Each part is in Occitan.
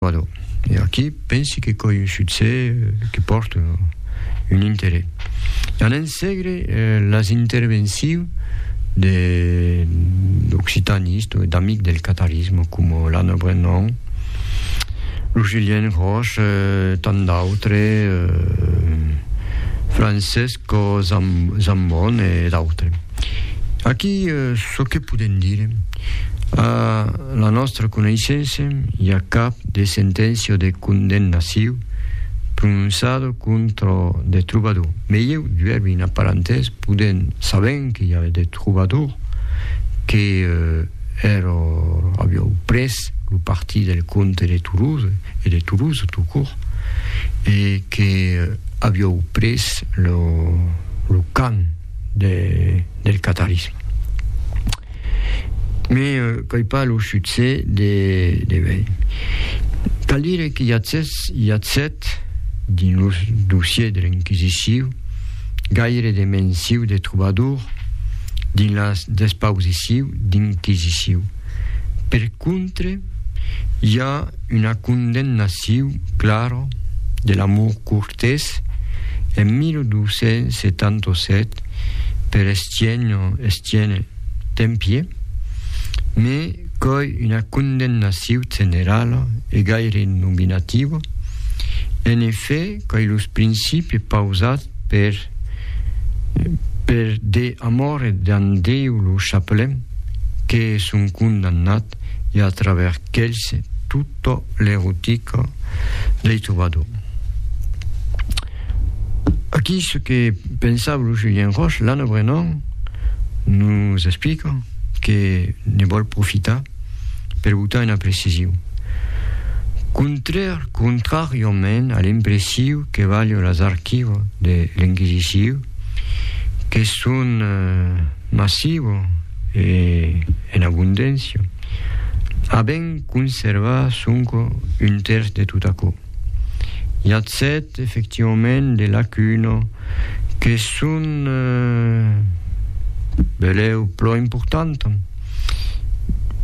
Vado. E aquí pensi que coi un succès que pòrte un interès. An ensegre las intervencions de d'occitanistes o d'amics del catarisme coma l'Anna Brennan, lo Julien Roche, tant d'autres, Francesco Zambon e d'autres. Aquí çò que podem dire, a la nòstra coneissença, i a cap de senténcia o de condemnaciu prononçada contra de trobador. Mei eu duervi una parantès, podem, sabent que i a de trobador que èra aviau pres lo partit del comte de Toulouse, e de Toulouse tout court, e que aviau pres lo, lo camp, de, del catarisme. Me qu'ai pas lo succès de, de vei. Cal dire que Yatzès, Yatzet, dins lo dossier de l'Inquisiciu, gaire de mensiu de trobador dins las despausiciu d'Inquisiciu. Per contre, i a una condemnaciu clara de l'Amour Courtés en 1277 per Estienne, Estienne Tempier, me coi una condemnaciu generala e gaire nominativa, en efè coi los principis pausats per Per de amor d'an Déu lo chapelem, que son condamnat e a travèrs qu'elhs tota l'erotica dei trobador. Aquí ce que pensava lo Julien Roche, l'Anne Brennan nos explica que ne vòl profitar per botar una precision. Contrar, contrariament a l'impressiu que valho las archivo de l'Inquisiciu, que son massivo e en abundencia, a ben conservar sonco un tèrç de tot aquò. I a sèt, efectivament, de lacuna que son eh, beleu pro importanta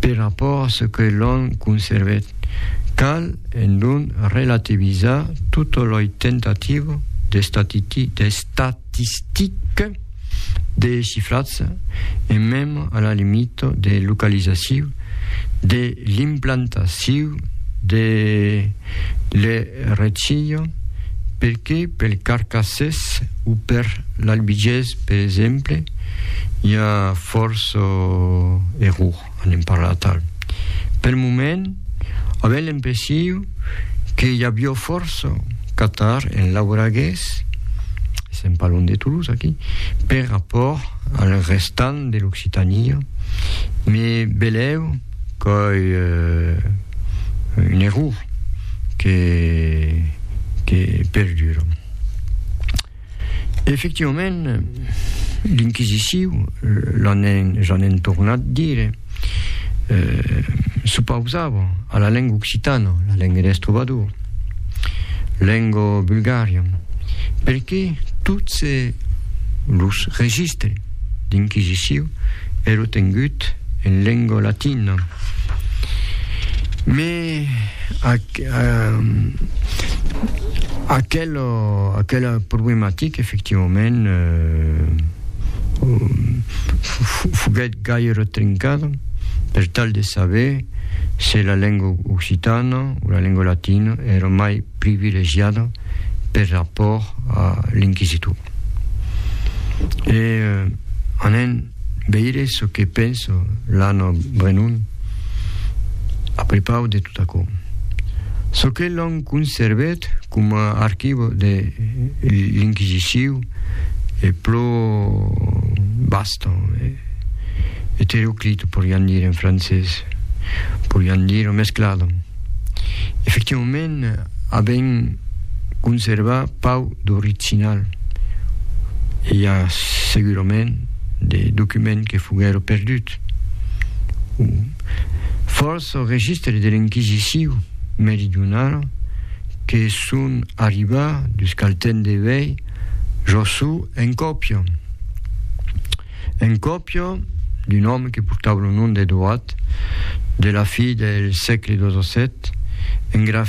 per rapport a ce que l'on conservèt. Cal, en don, relativizar tota loi tentativa d'estatistica de chifratge e mem a la limita de localizaciu de l'implantaciu de l'errecia, perque pel carcassés o per l'albigés, per exemple, i a fòrça error. anem parlar tal. Pel moment, avèm l'impressiu que i avió fòrça catar en lauragués, sèm pas lon de Toulouse aquí, per rapòrt al restant de l'Occitania, me belèu qu'ai un error que perdura. Efectivament, l'Inquisiciu, j'en èn tornat dire, s'opausava a la lenga occitana, la lenga des trobadors, lenga bulgaria, perqué tots los registres d'Inquisiciu èro tengut en lenga latina. Aquela problematica, efectivament, foguèt gaire trincada per tal de saber se la lenga occitana o la lenga latina èra mai privilegiada per rapòrt a l'inquisitor. Veire çò que pensa l'Anna Brenon a prepau de tot aquò. Çò que l'an conservèt coma archivo de l'Inquisiciu e pro basta, eteroclito, porián dire en francés, porián dire mesclada. Efectivament, avèm conservat pau d'original. I a segurament de documents que foguèron perduts. O fòrça o registres de l'Enquisiciu meridionala que son arribats dus cal temps de vei, jo sou en còpia. En còpia d'un òme que portava lo nom d'Edoat, de la fi del sègle xvii, en